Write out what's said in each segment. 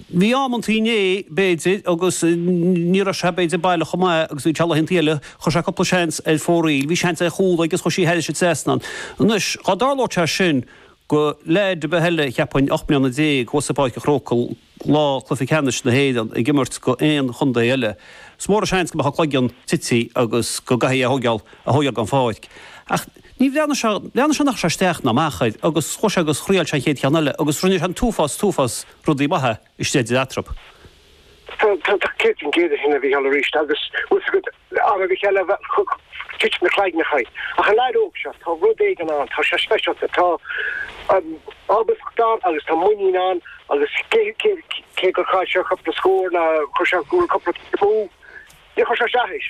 Bhí amantaí inné, b'fhéidir, agus ní raibh sé, b'fhéidir, baileach chomh maith is a bhí sé laethantaí eile, chuir sé cúpla seans ar fóraoil, bhí seans ar chúl agus chuir sé thairis an trasnán. Anois, dá dtarlódh sé sin go leaid ar bith eile, cheapfainn, ocht mbliana déag thuas i bPáirc a' Chrócaigh lá cluiche ceannais na hÉireann ag imirt do aon chontae eile, is mór an seans go mbeadh a cloigeann tite agus go gcaithfí é a thógáil, a thógáil den pháirc. Ach níor bhreathnaigh sé, bhreathnaigh sé nár chuir sé isteach ná amach air agus chuaigh sé agus scóráil sé an chéad cheann eile agus rinne sé an t-uafás, t-uafás, rudaí maithe istigh de thraip. Tá céad faoin gcéad ansin, a Mhícheáil, arís agus bhfuil's agat, ara Mhícheáil, a chum Cill na Cloigneach í. Ach an leaid óg seo, tá rud éigin ann, tá sé speisialta, tá ábaltacht ann agus tá muinín ann agus cé gur chaill sé cúpla scór nó chuir sé an cúl cúpla cic amú, níor chuir sé isteach air.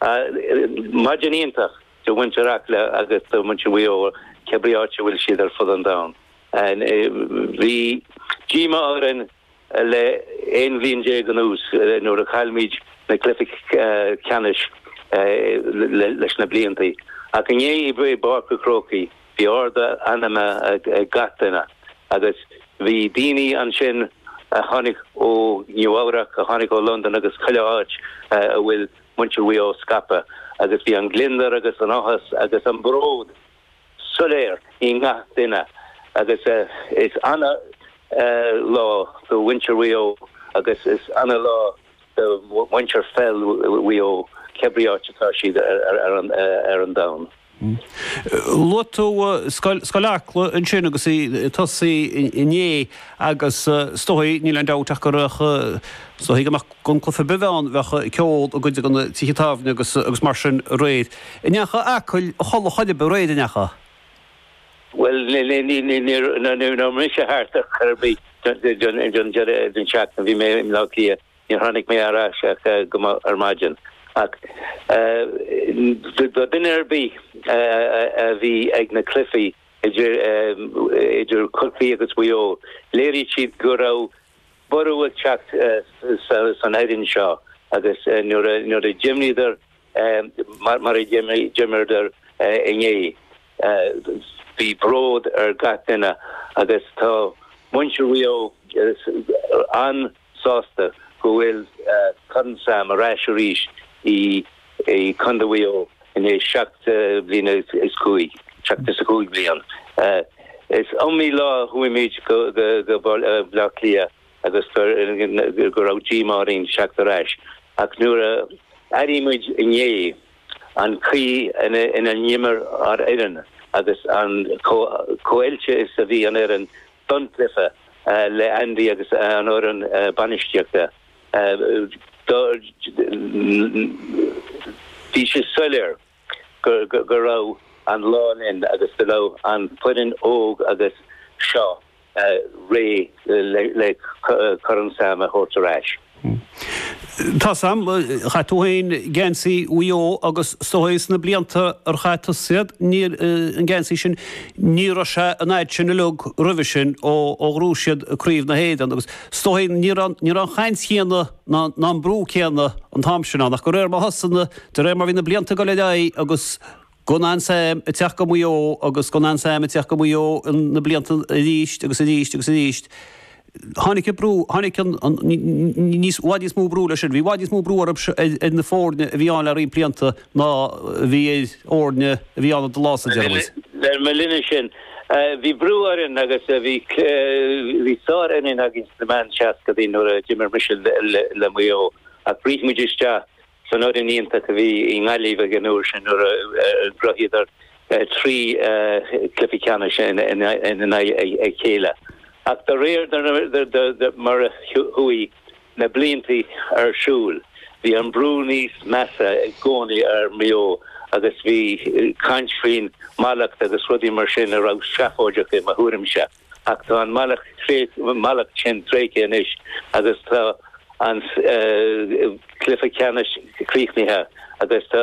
Ha, maidin iontach do mhuintir Acla agus do mhuintir Mhaigh Eo, cé brí áit a bhfuil siad ar fud an domhain. Bhí díomá orainn le aon bhliain déag anuas nuair a chaill muid na cluichí ceannais leis na bliantaí ach inné i bPáirc an Chrócaigh bhí ardú meanman ag gach duine agus bhí daoine ansin a tháinig ó Nua-Eabhrac, a tháinig ó Londain agus chuile áit a bhfuil. muintir Mhaigh Eo scaipthe agus bhí an gliondar agus an t-áthas agus an bród soiléir i ngach duine agus is ana-lá do mhuintir Mhaigh Eo agus is ana-lá do mhuintir pheil Mhaigh Eo cé brí áit atá siad ar an domhan. Luaigh tú Scoil Acla ansin agus í tosaithe inné agus is dóigh, níl aon dabht ach go raibh, is dóigh gur maith gan cluiche ar bith ann, bheadh ceol i gcuid de na tithe tábhairne agus mar sin aréir. Ar ndóiche Acaill, a chodladh a chuaigh aréir ar ndóiche? Bhuel, nuair a bhí mise thart ar bith don deireadh seachtaine, bhí mé i mBleá Cliath Níor tháinig mé ar ais ach go moch ar maidin, ach duine ar bith a bhí ag na cluichí idir Corcaigh agus Mhaigh Eo, léirigh siad go raibh borradh ag teacht san fhoireann seo agus nuair a d'imríodar mar a d'imríodar inné, bhí bród ar gach duine agus tá muintir Mhaigh Eo sásta go bhfuil Corn Sam ar ais arís i gCondae Mhaigh Eo i ndiaidh seacht mbliana is cúig, seachtó is a cúig bliain. Is iomaí lá a chuaigh muid go Bleá Cliath agus go raibh díomá orainn ag teacht ar ais ach nuair a airigh muid inné an chaoi ina n-imir ár fhoireann agus chomh oilte is a bhí an fhoireann Dún Laoghaire le Andy agus an fhoireann bainistíochta. Bhí sé soiléir go raibh an lá linn agus go raibh an fhoireann óg seo réidh le Corn Sam a thabhairt ar ais. Hm. Tá Sam. Chaith tú féin geansaí Mhaigh Eo agus is dóigh sna blianta ar chaith tusa iad, níor, an geansaí sin, ní raibh sé an fhad sin uileag roimhe sin ó ghnóthaigh siad craobh na hÉireann agus is dóigh ní raibh, ní raibh an chaint chéanna ná, ná an brú céanna an t-am sin ann ach de réir mar thosaigh na, de réir mar bhí na blianta ag dul ar aghaidh agus Gan Sam ag teacht go Maigh Eo agus go ndan Sam ag teacht go Maigh Eo na blianta arís agus arís agus arís. Tháinig an brú, tháinig an, an, níos, i bhfad níos mó brú leis sin. Bhí i bhfad níos mó brú ar, ar na foirne a bhí ann le roinnt blianta ná a bhí ar fhoirne a bhí ann i do lá-sa. Le mo linnse bhí brú orainn agus bhí, bhí sárfhoireann againn sna meán seascadaí nuair a d'imir mise le Maigh Eo ach rith muid isteach San fhoireann iontach a bhí i nGaillimh ag an uair sin nuair a ghnóthaíodar trí chluiche ceannais i ndiaidh a chéile ach de réir mar a chuaigh na blianta ar siúl bhí an brú níos measa i gcónaí ar Mhaigh Eo agus bhí caint faoin mhallacht agus rudaí mar sin a raibh seafóideach i mo thuairimse. Ach tá an mallacht sin tréigthe anois agus tá an cluiche ceannais críochnaithe agus tá.